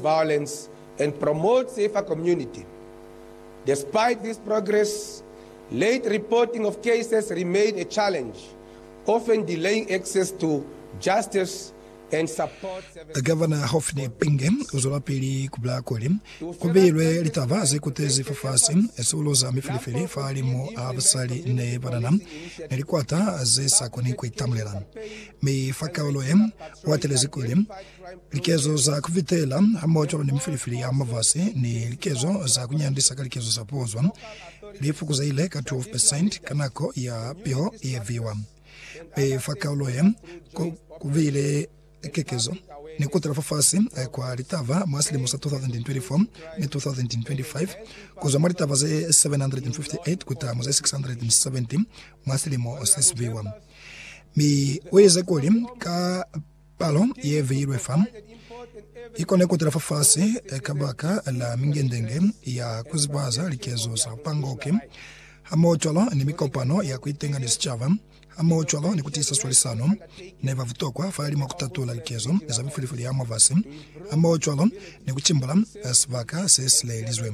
violence and promote safer community. Despite this progress, late reporting of cases remain a challenge, often delaying access to justice and support services. Gavana Hophni Phinge uzwelapili kubulaya kuli, Kubihilwe litaba zekutezi fafasi, sikulo za mifilifili fahalimu a basali ne banana, ni likwata zesakoni kuitamulela. Mi fa kaulo ye, uatelezi kuli, Likezo za ku fitela hamoho cwalo ni mifilifili ya mafasi ni likezo za ku nyandisa ka likezo za pozwa li fukuzehile ka 12 percent ka nako ya piho ye viwa. Mi fa kaulo ye, ku, ku bile kekezo ni ku tala fafasi kwa litaba mwa silimo sa 2024 ni 2025, ku zwa mwa litaba ze 758 kuta mu ze 670 mwa silimo se si viwa. Mi u ize kuli, Ka Palo ye beilwe fa i kone ku tala fafasi kabaka la mingendenge ya ku zibahaza likezo za pangoke, hamohocwalo ni mikopano ya ku itenga ni sicaba, hamohocwalo ni ku tiisa swalisano ne ba butokwa fa limo ku tatula likezo za mifulifuli ya mwabasi, hamohocwalo ni ku cimbula sibaka se si lelizwe.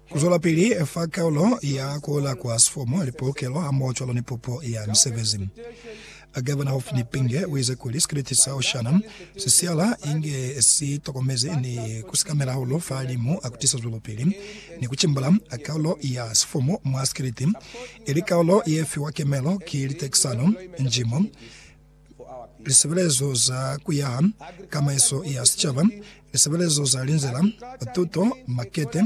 Ku zwelapili fa kaulo ya ku ola kwa sifomo, lipolokelo hamohocwalo ni pupo ya misebezi. Gavana Hophni Penge uize kuli sikiliti sa Oshana si siyala inge si tokomezi ni ku sikamela hahulu fa limu ku tisa zwelopili ni ku cimbula kaulo ya sifomo mwa sikiliti ili kaulo ye fiwa kemelo ki litekisano, njimo, lisebelezo za kuyaha, kamaiso ya sicaba, lisebelezo za linzila, tuto, makete,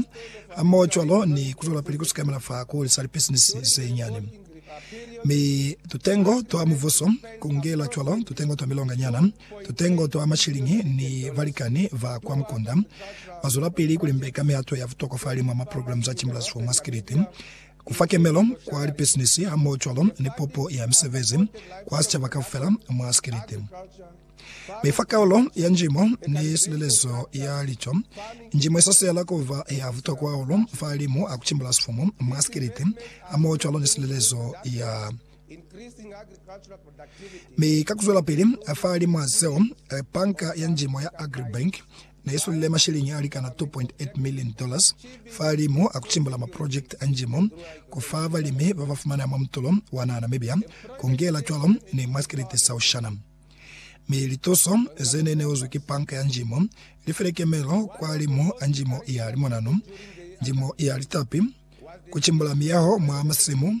hamohocwalo ni kuzwelapili kusikamela fa kuli sa lipisinisi zenyani. Mi tutengo twa muvuso, kungela cwalo tutengo twa milonganyana, tutengo twa mashilingi ni balikani ba kwa mukunda, bazwelapili kulimbeka mihato ya butokwa fahalimu ha maprograme za Chambers for Masculinity, Ku fa kemelo kwa lipisinisi hamohocwalo ni pupo ya misebezi kwa sicaba kaufela mwa sikiliti. Mi fa kaulo ya njimo ni silelezo ya lico, njimo isasela kuba ya butokwa hahulu fa limu a kucimbula sifumu mwa sikiliti hamohocwalo ni silelezo ya. Mi ka kuzwelapili fa limu a zeo, Banka ya Njimo ya Agribank ne i sulile masheleñi a likana K2.8 million fahalimu a ku cimbula maprojekiti a njimo, ku fa balimi ba ba fumana mwa mutulo wa naha Namibia, ku ngela cwalo ni mwa sikelete sa Oshana. Mi lituso ze ne neuzwi ki Panka ya Njimo li file kemelo kwalimu a njimo ya limonanu, njimo ya litapi, ku cimbula miyaho mwa masimu,